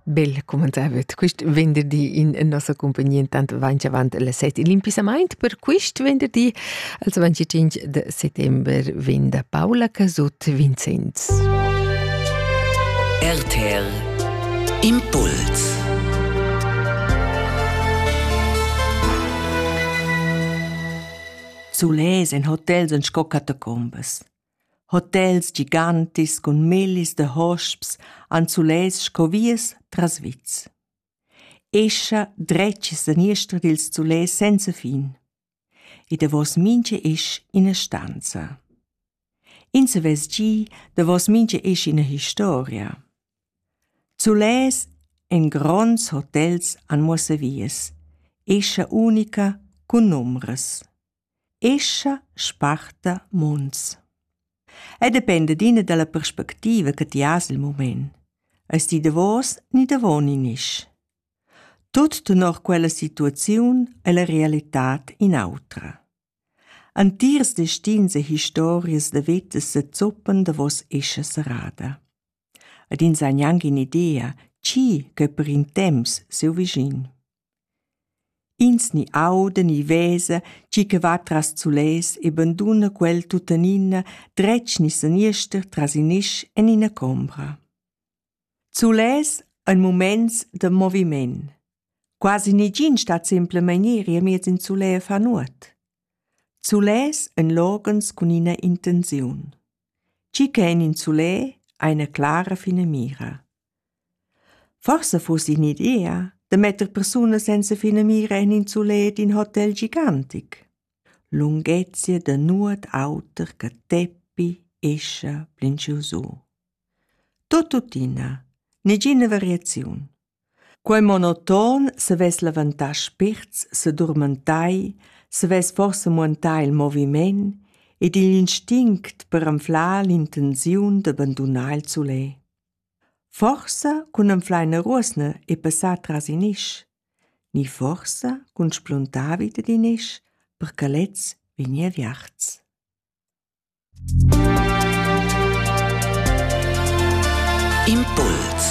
Bel commentavet quist venderdi in nossa compagnia intant vainch avant le set il impissamaint per quist venderdi als 25 de settember vegn da Paula Casut Vincenz. RTL Impuls Sulais en hotels en sco catacombas. Hotels gigantis cun millis da hosps han sulets sco vias tras vits. Escha dretg e saniester dils sulets senza fin. E davos mintga isch ina stanza. Ins savess gi davos mintga isch ina historia. Sulets en gronds hotels han muossa vias, escha unica cun numbras. escha sparta mons. Ei dependa d'ina dalla perspectiva che ti has il mument. Eis ti davos ni davon in isch. Tut tenor quella situaziun e la realitad in autra. Antiers destins e historias da veta se zoppan davos escha serrada. Ed ins ha gnanc in idea, chi che per in temps seu vischin. Ins ni auda ni vesa tgi che va tras sulets e banduna quel tuttenina dretg ni seniester tras in isch en ina combra. Sulets ein muments da moviment. Quasi negin stat simplemein iri amiez in sulè a far nuot. Sulets ein loghens cun ina intenziun. Tgi che en in sulè ha ina clara finamira. Forsa fuss in'idea da metter persunas senza finamira en in sulet in hotel gigantic. Lunghezia da nuot auter che teppi, escha, plinchiu su. Tot tuttina, negina variaziun. Quei monoton savess levantar spirts, sedurmentai, savess forsa muentar il moviment ed igl instinct per anflar l'intenziun d'abbandonar il sulet. Forsa cun anfleina ruosna e passar tras in isch, ni forsa cun spluntar vita d'in isch per che lez vegni aviarts. Impuls